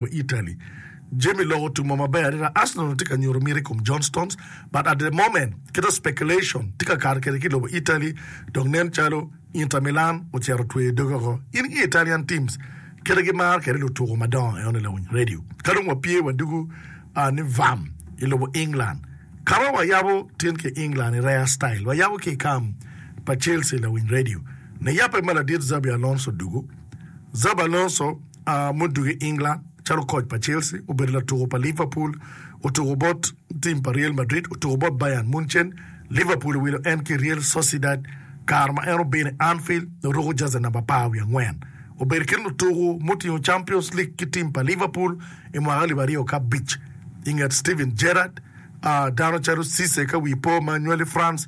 me Italy. Jami lok otumo maber adada, Arsenal onongo tye ka nyuto miti kom John Stones, but at the moment kite speculation tye ka kato kede ki lobo Italy dok nen calo Inter Milan ocito tweyo doge oko. In ki Italian teams kite gimaro kede lutuko madongo eno ni lawiny radio. Ka dong wapye wadugu aa ni vam i lobo England, kara wayabo tin ki England i rare style, wayabo ki i kam pa Chelsea lawiny radio. Niyappa ma ladit Xabi Alonso dugu, Xabi Alonso, mudugo i England calo koc pa Chelsea, obedo latuko pa Liverpool, otuko bot tim pa Real Madrid, otuko bot Bayern Munchen. Liverpool owilo en ki Real Sociedad kare ma en obino i Anfield dok ruko jazi namba apar wiye angwen. Obedo kit lutuko mutingo Champions League ki tim pa Liverpool i mwaka alip aryo ki abic i nget Steven Gerrard, dano calo Cisse ka wi po ma nywali France,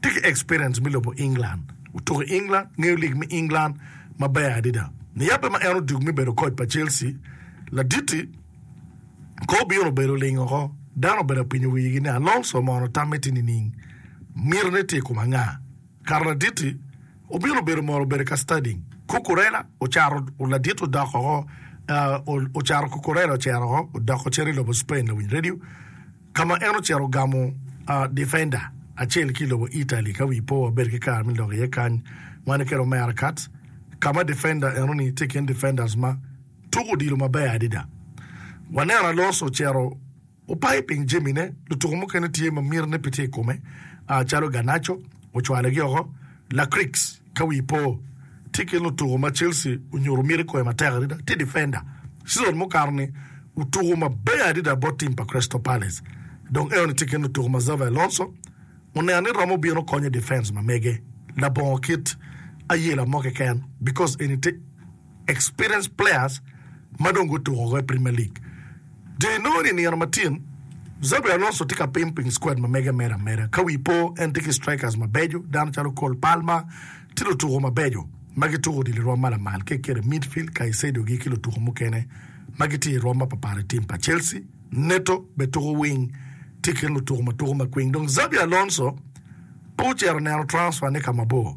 tye ki experience me lobo England, otuko i England, ngeyo lig me England maber adada. Niyabbe ma en odugo me bedo koc pa Chelsea, laditi kong obino obedo ling oko. Dano obedo ka pinyo wigi ni, 'Alonso mono tamme tye nining? Mitine tye i kom anga? Kare laditi obino obedo mono obedo ka studying. Cucurella ocato, laditi odok oko, ocato Cucurella ocito oko, odoko cito i lobo Spain, lawiny redio, ka ma en ocito ogamo difenda acel ki i lobo Italy ka wi po wabedo ki kare me lok iye kany, wan kede Omera Katz, ka ma difenda eno-ni tye i kin difenders ma tuko odilo maber adada. Waneno Alonso ocito opayo piny jamine, lutuko mukene tye ma mitine pe tye i kome calo Garnacho, ocwalogi oko, Lakrix. Ka wii po, tye kit lutuko ma Chelsea onyuto miti kwoyo matek adada, tye difenda. Cizon mukato-ni, otuko maber adada bot tim pa Crystal Palace. Dong enoni tye kit lutuko ma Xabi Alonso oneno ni romo bino konyo i difens ma mege labongo kit ayela mo keken, bikos eni te. experienced players ma dong gutuko woko i Premier League. Jo inongo ni i nino ma tin, Xabi Alonso tye ka pim piny squad ma mege mere ameda. Ka wi po, en tye ki strikers mabeco, dano calo Cole Palmer tye lutuko mabeco ma gituko odilo i rwom ma lamal kek kede midfield Caicedo-gi ki lutuko mukene ma gitye i rwom mapatpat i tim pa Chelsea. Neto bene tuko wing, tye i kin lutuko ma tuko makwiny. Dong Xabi Alonso pe ocito neno transfer-ne ka mabor.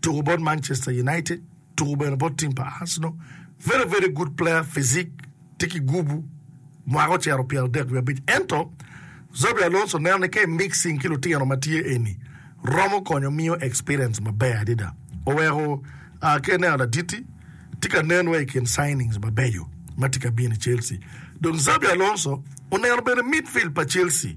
tuku bot Manchester United, tuku bene bot team pa Arsenal, very very good player physique tye ki gubu mwaka ocito pyera adek wiye abic ento Xabi Alonso neno ni ka i mixing ki lutino ma tye eni romo konyo miyo experience maber adada oweko uh, ka ineno laditi tye ka nen wa i kin signings mabeco ma tye ka bino i Chelsea dong Xabi Alonso oneno bene midfield pa Chelsea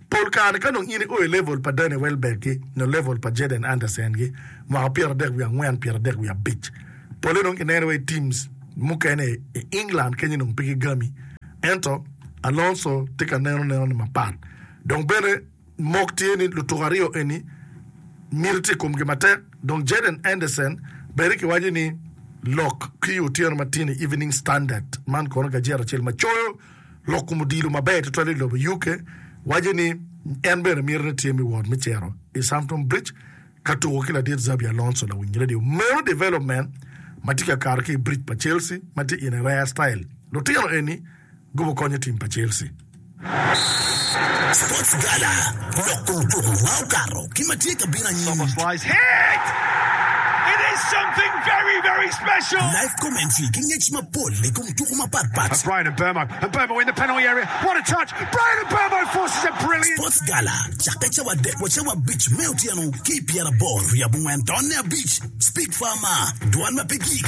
Pol kare ka nongo in i o i level pa Danny Welbeck gi nyo level pa Jaden Anderson gi mwaka pyera adek wiye angwen, pyera adek wiye abic, pole nongo kineno wa i teams mukene i England kenyo nongo pe gigami. Ento Alonso tye ka neno neno ne mapat. Dong bene mok tye ni lutuko aryo eni miti tye i komgi matek. Dong Jaden Anderson bene ki waco ni lok ki i otyeno matino i Evening Standard man kono gajeta acel ma coyo Lok kom odilo maber tutwal i lobo UK waco ni en bene mito ni tye miwot me cito i Stamford Bridge ka tuko ki ladit Xabi Alonso lawiny redio meno development ma tye ka kato ki i bridge pa Chelsea ma tye in a rare style lutino eni gobo konyo tim pa Chelsea. Sports Gala, Lok kom tuko ma okato ki ma tye ka bino anyim. Live commentary ki ngec mapol i kom juko mapat pat. Sports Gala cakke cawa adek wa cawa abic me otyeno ki i pyeraboro wi abongwen taonne abic. Speak far ma, dwol ma pe gik.